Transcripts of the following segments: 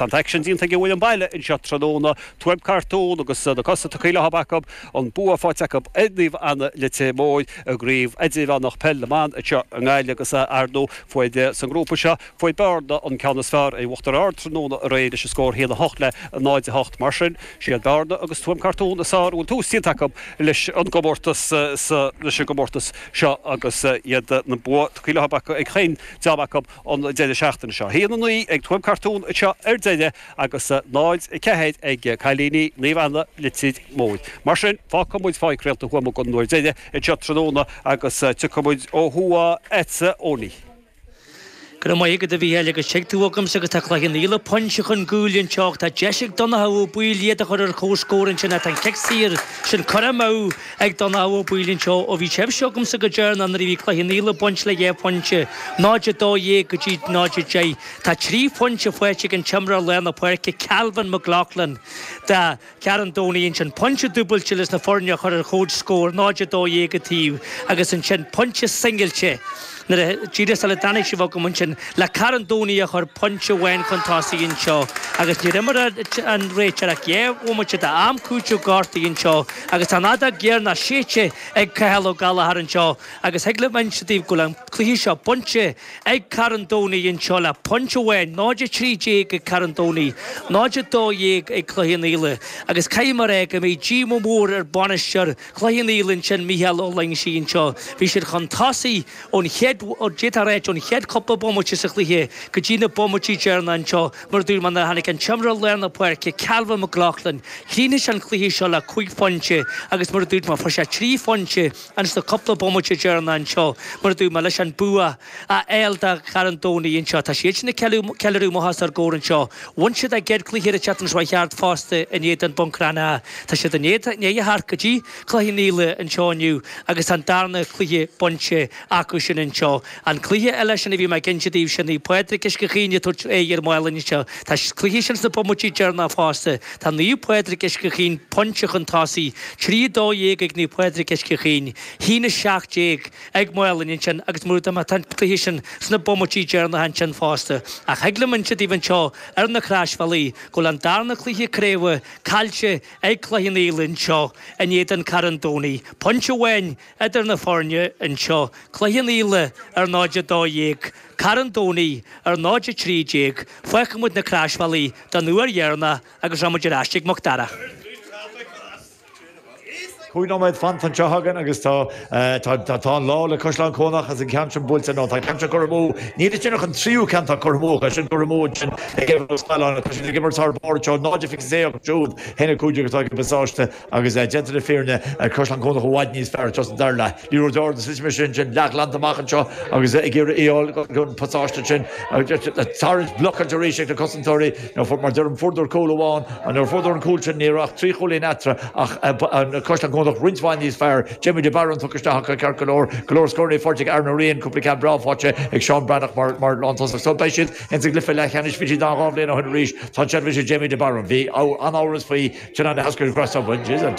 Tá an t-aicsean déanta ag an bhfoireann baile anseo tráthnóna, Tuaim Cartún agus na cosa tugtha leo acu, an bua faighte acu ar Naomh Anna Leitir Móir i gCraobh Idirmheánach Peil na mBan anseo i nGaillimh agus ar ndóigh fuair, sa ngrúpa seo, fuair Bearna an ceann is fearr ar Uachtar Ard tráthnóna aréir leis an scór 1 8 le 0 8. Mar sin, siad Bearna agus Tuaim Cartún is fearr a bhfuil tús déanta acu leis an gcomórtas sa, leis an gcomórtas seo agus iad an bua tugtha leo ag chaon dream acu. an deireadh seachtaine seo. 1 9 ag Tuaim Cartún anseo ar deireadh agus 0 4 ag Cailíní Naomh Anna Leitir Móir. Mar sin, fágfaidh muid Páirc Réalta Thuama don uair dheiridh anseo tráthnóna agus tiocfaidh muid ó thuaidh chugatsa, a Eoghainí. Go raibh maith agat, a Mhícheáil, agus Tig tú agamsa agus tá Cloich Cheann Fhaola pointe chun cúil anseo ach tá deis ag Donncha Ó Baoill iad a chur ar comhscór ansin ach tá an cic saor sin curtha amú Ag Donncha Ó Baoill anseo, ó bhí sibhse agamsa go deireanach nuair a bhí Cloich Cheann Fhaola ag baint le dhá phointe, 0:12 go dtí 0:10. Tá trí phointe faighte ag an t-imreoir lár na páirce Calvin McLaughlin do Charn Domhnaigh ansin, pointe dúbailte leis na foirne a chur ar chomhscór, 0:12 an taobh, agus ansin pointe singilte. Uaidh díreach sula dtáinig sibh agam ansin le Carn Domhnaigh a chur pointe amháin chun tosaigh anseo agus níor imir an réiteoir ach dhá bhomaite d'am cúitimh gortuithe anseo agus tá an fheadóg dheireanach séidte ag Cathal Ó Gallchóir anseo agus thig liom inse daoibh go bhfuil an cluiche seo bainte ag Carn Domhnaigh anseo le pointe amháin, 0, 13 ag Carn Domhnaigh, 0, 12 ag Cloich Cheann Fhaola agus caithfidh mé a ráit go mbeidh díomá mór ar bhainisteoir Chloich Cheann Fhaola ansin Mícheál Ó Loingsigh anseo. Bhí siad chun tosaigh ón chéad, d'fhéadfá a ráit, ón chéad chúpla bomaite sa chluiche go dtí na bomaití deireanacha anseo mar a dúirt mé nuair a tháinig an t-imreoir lár na páirce, Calvin McLaughlin. Chríochnaigh sé an cluiche seo le cúig phointe agus mar a dúirt mé fuair sé trí phointe ins na cúpla bomaite deireanacha anseo mar a dúirt mé leis an bua A fháil do Charn Domhnaigh anseo, tá siad sin ag ceiliúradh amuigh os ár gcomhar anseo. Bhain siad a gcéad chluiche an tseachtain seo a chuaigh thart fosta in éadan Bhun Cranncha. Tá siad i ndiaidh a theacht go dtí Cloich Cheann Fhaola anseo inniu agus tá an darna cluiche bainte acu sin anseo. An cluiche eile sin a bhí mé ag inse daoibhse, Naomh Pádraig Uisce Chaoin ag tabhairt aghaidh ar Mhálainn anseo. Tá an cluiche sin sna bomaití deireanach fosta. Tá Naomh Pádraig Uisce Chaoin pointe chun tosaigh, 3, 12 ag Naomh Pádraig Uisce Chaoin, 1, 17. ag Málainn ansin agus mar a dúirt mé tá an cluiche sin sna bomaití deireanacha ansin fosta, ach thig liom inse daoibh anseo ar na Croisbhealaí go bhfuil an darna cluiche craoibhe caillte ag Cloich Cheann Fhaola anseo in éadan Carn Domhnaigh pointe amháin idir na foirne anseo, Cloich Cheann Fhaola ar 0-12, Carn Domhnaigh ar 0-13, fágfaidh muid na Croisbhealaí don uair dheireanach agus rachaidh muid ar ais ag Mac Dara. Cúig nóiméad fanta anseo againn agus tá an lá le Caisleán Cuanach agus an ceann sin buailte. Nó tá an ceann seo curtha amú. Níl ansin ach an tríú ceann atá curtha amú acu sin, curtha amú ansin ag Aodh Ó Scanláin agus tá siad ag imirt thar barr anseo, 0 a fiche sé acu siúd, haon a cúig déag atá ag an bPasáiste agus déanta na fírinne, Caisleán Cuanach i bhfad níos fearr anseo sa dara leath. Ní raibh deor de slite, mise ansin, leathghlanta amach anseo agus ag iarraidh cúl don Phasáiste ansin a tharraingt, blockáilte arís ag na cosantóirí. Mar deirim, fuaireadar cúl amháin, an uair a fuaireadar an cúl sin, ní raibh ach trí chúilín eatarthu ach Caisleán Cuanach roinnt mhaith níos fearr, Jamie de Barún tugtha isteach acu ceart go leor, go leor scóranna faighte ag Aaron Ó Riain, cúpla ceann breá faighte ag Seán Breathnach mar lántosach. So beidh siad ins an gcluiche leathcheannais, bhí siad ann dhá bhliain ó shin arís, tá an tseilbh arís ag Jamie de Barún. Bhí an-amhras faoi. Sin an eascair ghrásta a bhain di. An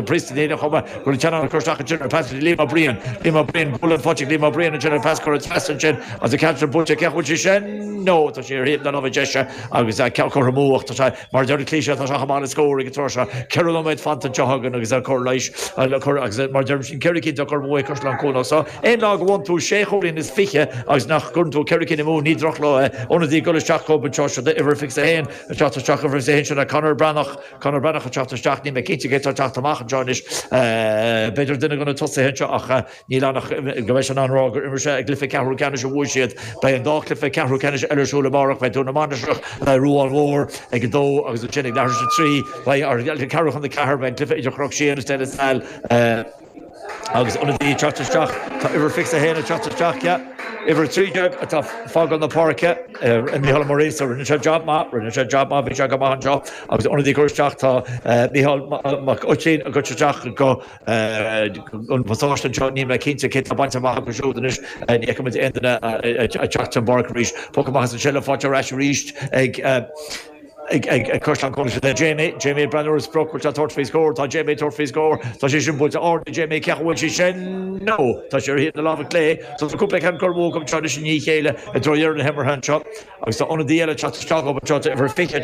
priosta féin a chum é. Chuir an tseanbhean cur isteach ansin ar phas Liam Ó Briain. Liam Ó Briain, bualadh an phoitigh, Liam Ó Briain ansin ar phas, cuireadh pas ansin agus an ceann sin buailte. Cé chaoi bhfuil sé sin? Nó tá sé ar thaobh na láimhe deise agus ceann curtha amú ach tá sé, mar a deir an cliché, tá sé chomh maith le scór ag an tráth seo. Ceithre nóiméad fanta anseo againn agus ar cor leighis le cur agus, mar a deirim, sin ceithre cinn curtha amú ag Caisleán Cuanach. Sea, aon lá go bhfaigheann tú sé chúilín is fiche agus nach gcuireann tú ceithre cinn amú, ní drochlá é. Ionadaí ag dul isteach chugam anseo, seo é uimhir fiche a haon, Ag teacht isteach uimhir 21 sin é Conor Breathnach. Conor Breathnach ag teacht isteach. Níl mé cinnte cé atá ag teacht amach anseo anois. B'fhéidir duine de na tosaithe anseo ach níl ann ach go mbeidh sé in ann rá gur imir sé i gcluiche ceathrú ceannais a bhuaigh siad. Beidh an dá cluiche ceathrú ceannais eile ar siúl amárach. Beidh Dún na Mainistreach le Ruán Mór ag a 2 agus ansin ag leathuair tar éis a 3 beidh ceathrú chun a 4, beidh an cluiche idir Chnoc Síon is De La Salle. Agus ionadaí ag teacht isteach, tá uimhir fiche a haon ag teacht isteach, yeah. Uimhir a trí déag atá ag fágáil na páirce, Micheál Ó Muiríosa, rinne sé jab maith, rinne sé jab maith, bhí sé go maith anseo. Agus ionadaí ag dul isteach, tá Micheál Mac Oitín ag dul isteach don Phasáiste anseo, níl mé cinnte cé tá bainte amach acu siúd anois, ní fheiceann muid aon duine ag teacht den bpáirc arís. Poc amach is an tseilbh faighte ar ais arís ag. ag Caisleán Cuanach le Jamie. Jamie ag breathnú ar an sprioc, bhfuil sé ag tabhairt faoi scór? Tá Jamie ag tabhairt faoi scór. Tá sí sin buailte ard ag Jamie, cé chaoi bhfuil sí sin? No! Tá sí ar thaobh na láimhe clé. So tá cúpla ceann curtha amú acu anseo anois i ndiaidh a chéile i dtreo dheireadh na himeartha anseo agus tá ionadaí eile ag teacht isteach dhom anseo, uimhir 20.